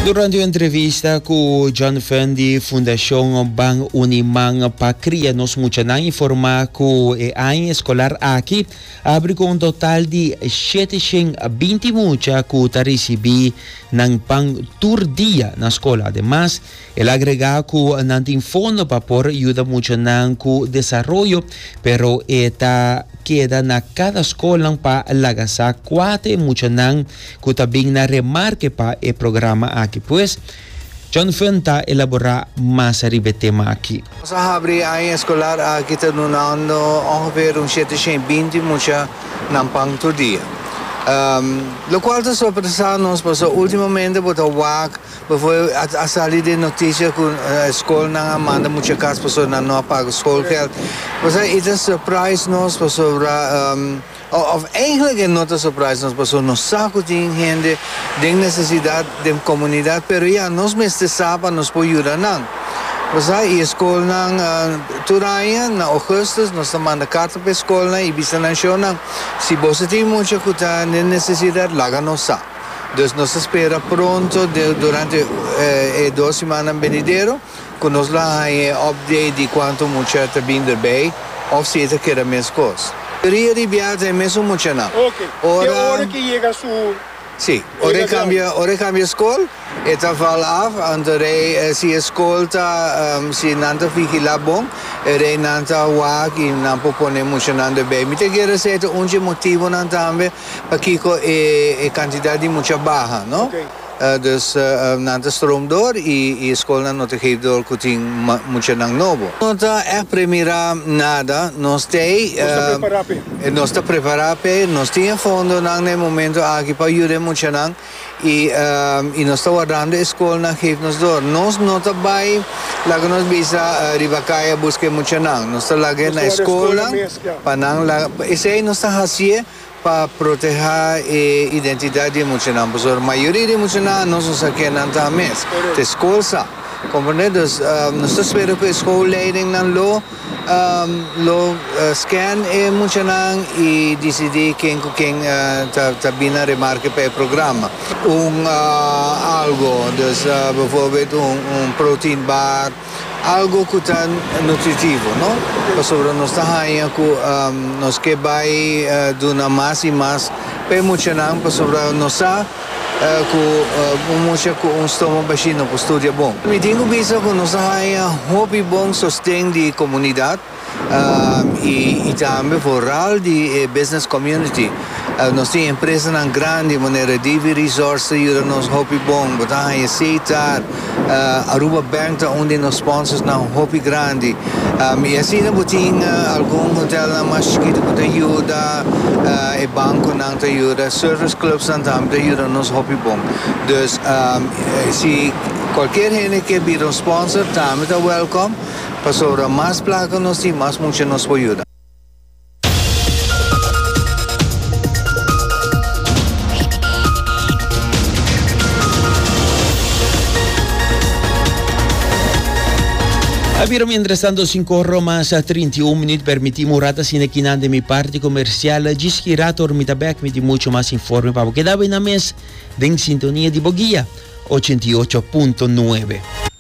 Durante un entrevista ku John Fenn di Fundashon Ban Uniman pa Kria Nos Muchanan informá ku e aña eskolar aki abri ku un total di shete shen binti mucha ku ta risibí nan pan tur dia na skol. Ademas, El agrega cu nan tin fondo pa por yuda muchanan cu desaroyo, pero e ta keda na cada scolnan pa laga sa cua ta e muchanan cu ta bin na remarke pa e programa aki. Pues, John Fun ta elabora mas riba e tema aki. Nos a habri e aña escolar aki ta dunando ongeveer un shete shen i binti mucha nan pan tur dia. Locual ta sorpresa nos pasobra ultimamente bo ta wak. P'e a sali den noticia cu escolnan a manda mucha cas pasobra nan no a paga schoolgeld. Pasobra e ta surprise nos pasobra, of eigenlijk e no ta surprise nos pasobra nos sa cu tin hende den necesidad den comunidad, pero ya, nos mester sa pa nos por yuda nan. Pasobra e escolnan, tur aña na augustus nos ta manda carta p'e escolnan y bisa nan show nan, si boso tin mucha cu ta den necesidad laga nos sa. Dus nos ta spera pronto durante e dos simannan benidero cu nos lo haña e update di cuanto mucha ta bin erbij of si e ta keda meskos. Ria di biaha ta e mesun muchanan. Te ora ke yega su edad. Si, ora e cambia scol e ta val af anto rei si e scol ta si nan ta vigila bon e rei nan ta wak y nan por pone muchanan erbij. Mi ta keda sa e ta un dje motibonan tambe pakiko e kantidat di mucha baha, no? Dus nan ta strom dor i e skolnan no ta gevi dor ku tin muchanan nobo. No ta ègt premirá nada. Nos t'ei. Nos ta prepará p'e. Nos ta prepará p'e. Nos tin e fondonan na e momentu aki pa yuda e muchanan. y y nos ta wardando e scolnan geef nos door nos no ta bay laga nos bisa riba caye a busca e muchanan nos ta laga nos ta warda e scolnan pa nan laga esey nos ta haciye pa proteha e identidad di e muchanan pasobra mayoria di e muchanan anos no sa kenan ta mes te scol sa comprende nos ta spera cu e scool leidingnan lo. Lo scan e muchanan y dicidi ken cu ken ta bin na remarke pa e programa. Un algo, dus bijvoorbeeld un protein bar, algo cu ta nutritivo, no? Pasobra nos ta hanja cu nos ke bay duna mas y mas pa e muchanan pasobra nos sa. cu un mucha cu un stomo bashi no por studia bon. Mi tin cu bisa cu nos a haya hopi bon sosten di comunidad y tambe foral di e business community. Nos tin empresanan grandi manera DV Resorts ta yuda nos hopi bon, bo ta haya seitar. Aruba Bank ta un di nos sponsorsnan hopi grandi. I asina bo tin algun hotelnan mas chikito ku ta yuda, e bankonan ta yuda, service clubsnan tambe ta yuda nos hopi bon. Dus si kualkier hende ke bira un sponsor tambe ta wèlkòm, pasobra mas plata ku nos tin mas mucha nos por yuda. A bira mientras tanto cinco romas a 31 minuut permiti murata sine kinan de mi parte comercial jis ki rato mi ta back mi di mucho mas informe pa bo keda bai na mes den sintonia di bo guia 88.9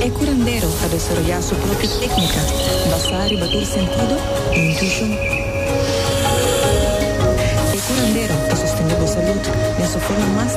E curandero ta desaroyá su propio técnica basá riba tur sentido i intuishon. E curandero ta sostendé bo salud den su forma mas.